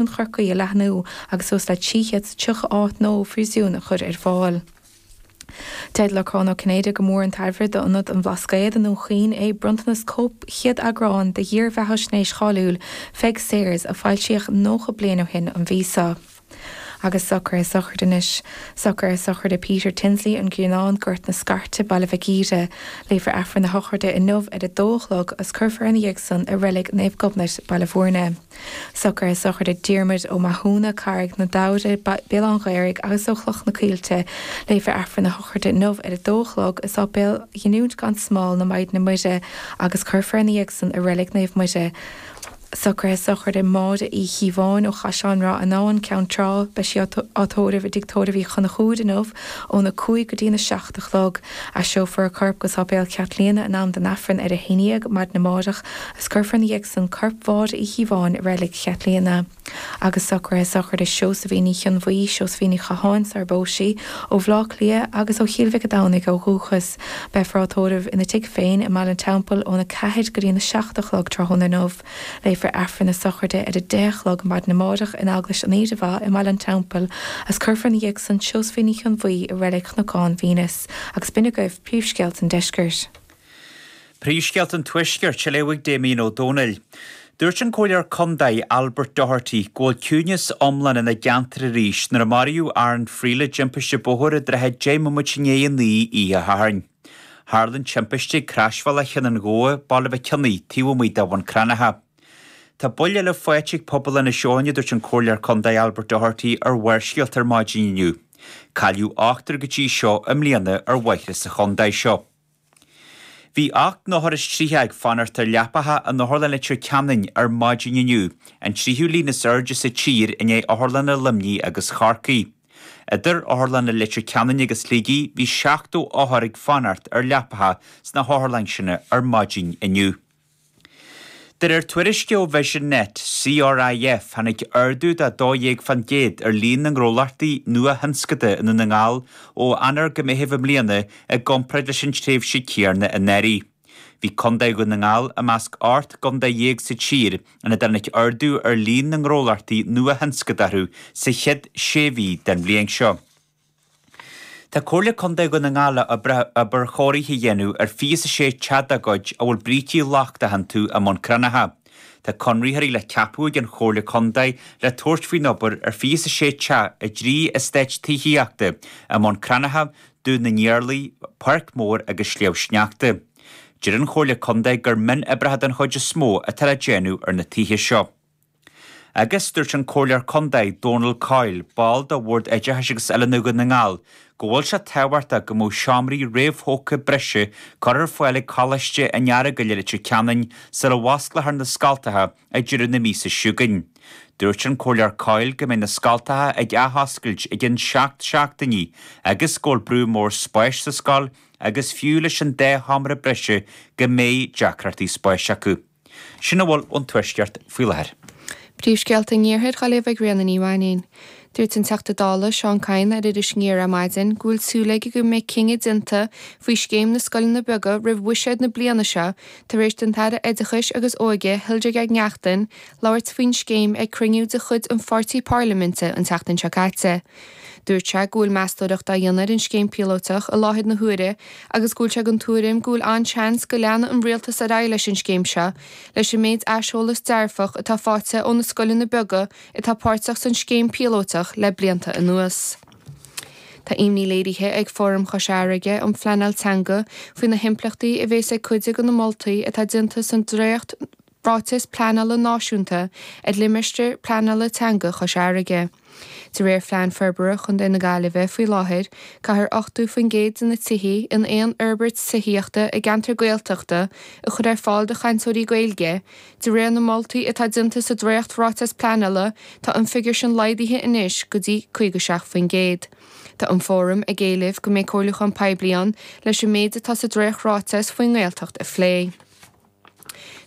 Chun Chorcaí a leathnú agus suas le 330 áit nua phríosúin a chur ar fáil. Deir Lorcán Ó Cinnéide gur mór an chabhair d'Ionad an Bhlascaoid i nDún Chaoin é bronntanas cóip chéad eagrán de dhírbheathaisnéis cháiliúil Pheig Sayers a foilsíodh 90 bliain ó shin an mhí seo. Agus socruithe sochraide anois. Socruithe sochraide Peter Tinsley, An Grianán, Gort na Scairte, Baile Mhic Íre. Léifear Aifreann a shochraide inniu ar a dó a chlog agus cuirfear ina dhiaidh san i Reilig Naomh Gobnait, Baile Mhúirne. Socruithe sochraide Diarmuid Ó Mathúna, Carraig na Damhaire, Béal Átha an Ghaorthaidh agus ó Chloich na Coillte. Léifear Aifreann a shochraide inniu ar a dó a chlog i Sáipéal Ghiniúint gan Smál na Maighdine Muire agus cuirfear ina dhiaidh san i Reilig Naomh Muire. Socruithe sochraide Máire Uí Chíobháin ó Chaisleán Ráthanáin, Ceann Trá. Beidh sí á tórramh i dTigh Tórraimh Uí Chonchúir inniu óna cúig go dtína seacht a chlog. Aistreofar a corp go Sáipéal Chaitlíona in am don Aifreann ar a haon dhéag maidin amáireach agus cuirfear ina dhiaidh san corp Mháire Uí Chíobháin i Reilig Chaitlíona. Agus socruithe sochraide Seosaimhín Uí Chonbhuí, Seosaimhín Ní Chatháin, sarar phós sí, ó Bhleá Cliath agus ó Chíll Mhic a' Domhnaigh ó dhúchas. Beifear á tórramh ina tigh féin i mBaile an Teampaill óna ceathair go dtína seacht a chlog tráthnóna inniu. Léifear Aifreann a sochraide ar a deich a chlog maidin amáireach in Eaglais an Aoire Mhaith i mBaile an Teampaill agus cuirfear ina dhiaidh san Seosaimhín Uí Chonbhuí i Reilig Chnocán Venus agus b'in agaibh príomhscéalta an Deiscirt. Príomhscéalta an Tuaiscirt a léifidh Damien Ó Dónaill. Dúirt an Comhairleoir Condae Albert Doherty go bhfuil ciúineas iomlán ina gceantar arís nuair a maraíodh Aaron Friel i dtimpiste bóthair i dtrátha deich mbomaite i ndiaidh a naoi oíche Shathairn. Tharla an timpiste ag Croisbhealach Chionn an Ghabha, Baile Mhic Cionaoith, taobh amuigh de Bhun Cranncha. Tá buille eile faighte ag pobal Inis Eoghain a dúirt an Comhairleoir Condae Albert Doherty ar Bharrscéalta ar maidin inniu. Cailleadh ochtar go dtí seo i mbliana ar bhóithre sa chondae seo. Bhí ocht n-othar is triocha ag fanacht ar leapacha in Otharlann Leitir Ceanainn ar maidin inniu, an tríochú líon is airde sa tír i ndiaidh Otharlanna Luimnigh agus Chorcaigh. Idir Otharlanna Leitir Ceanainn agus Shligigh bhí 70 othar ag fanacht ar leapacha sna hotharlanna sin ar maidin inniu. De réir tuairisce ó Vision Net, CRIF, tháinig ardú de 12 faoin gcéad ar líon na ngnólachtaí nua-thionscanta i nDún na nGall ó Eanáir go Meitheamh i mbliana i gcomparáid leis an tréimhse céarna anuraidh. Bhí Condae Dhún na nGall i measc ocht gcondae dhéag sa tír ina dtáinig ardú ar líon na ngnólachtaí nua-thionscadathú sa chéad sé mhí den bhliain seo. Tá Comhairle Condae Dhún na nGall le obair chóirithe a dhéanamh ar fiche is a sé teach dá gcuid a bhfuil brící lochtach iontu i mBun Cranncha. Tá conraitheoirí le ceapadh ag an Chomhairle Condae le tabhairt faoin obair ar fiche is a sé teach i dtrí estáit tithíochta i mBun Cranncha Dún na nIarlaí, Páirc Mór agus Sliabh Sneachta. Deir an Chomhairle Contae gur mionoibreacha den chuid is mó atá le déanamh ar na tithe seo. Agus dúirt an Comhairleoir Contae, Donal Coyle, ball de Bhord Oideachais agus Oiliúna Dhún na nGall, go bhfuil sé tábhachtach go mbeadh seomraí réamhthógtha breise curtha ar fáil ag Coláiste an Eargail i Leitir Ceanainn sula bhfosclófar na scoltacha ag deireadh na míosa seo chugainn. Dúirt an Comhairleoir Coyle go mbeidh na scoltacha ag athoscailt i gceann seacht seachtainí agus go bhfuil brú mór spáis sa scoil agus fiú leis an dá sheomra breise go mbeidh deacrachtaí spáis acu. Sin a bhfuil ón Tuaisceart faoi láthair. Príomhscéalta an Iarthair, i nGaillimh ag Ríona Ní Mhainnín. Dúirt an Teachta Dála Seán Kyne ar Iris Aniar ar maidin go bhfuil súil aige go mbeidh cinneadh déanta faoi scéim na scoileanna beaga roimh bhuiséad na bliana seo tar éis don tAire Oideachais agus Óige Hildegarde Naughton labhairt faoin scéim ag cruinniú de chuid an pháirtí pairliminte an tseachtain seo caite. Dúirt sé go bhfuil meastóireacht á dhéanamh ar an scéim píolóiteach i láthair na huaire agus go bhfuil sé den tuairim go bhfuil an-seans go leanfaidh an Rialtas ar aghaidh leis an scéim seo leis an méid aiseolas dearfach atá faighte ó na scoileanna beaga atá páirteach san scéim píolótach le blianta anuas. Tá imní léirithe ag Fóram Chois Fharraige um Phleanáil Teanga faoi na himpleachtaí a bhéas ag cuid de na moltaí atá déanta san dréacht Ráiteas Pleanála Náisiúnta ar Limistéar Pleanála Teanga Chois Fharraige. De réir Phlean Forbartha Chontae na Gaillimhe faoi láthair, caithfear 80% de na tithe in aon fhorbairt tithíochta i gceantar Gaeltachta a chur ar fáil do chainteoirí Gaeilge De réir na moltaí atá déanta sa Dréacht-Ráiteas Pleanála, tá an figiúr sin laghdaithe anois go dtí 57%. Tá an Fóram ag éileamh go mbeidh comhairliúchán poiblí ann leis an méid atá sa Dréacht-Ráiteas faoin nGaeltacht a phlé.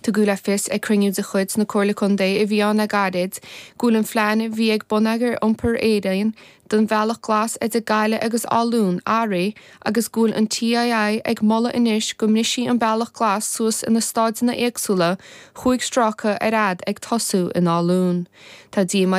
Tugadh le fios ag cruinniú de chuid na Comhairle Contae a bhí ann le gairid go bhfuil an plean a bhí ag Bonneagar Iompair Éireann don Bhealach Glas idir Gaillimh agus Áth Luain athraithe agus go bhfuil an TII ag moladh anois go mbrisfí an Bealach Glas suas ina stáideanna éagsúla chúig stráca ar fad ag tosú in Áth Luain. Tá díomá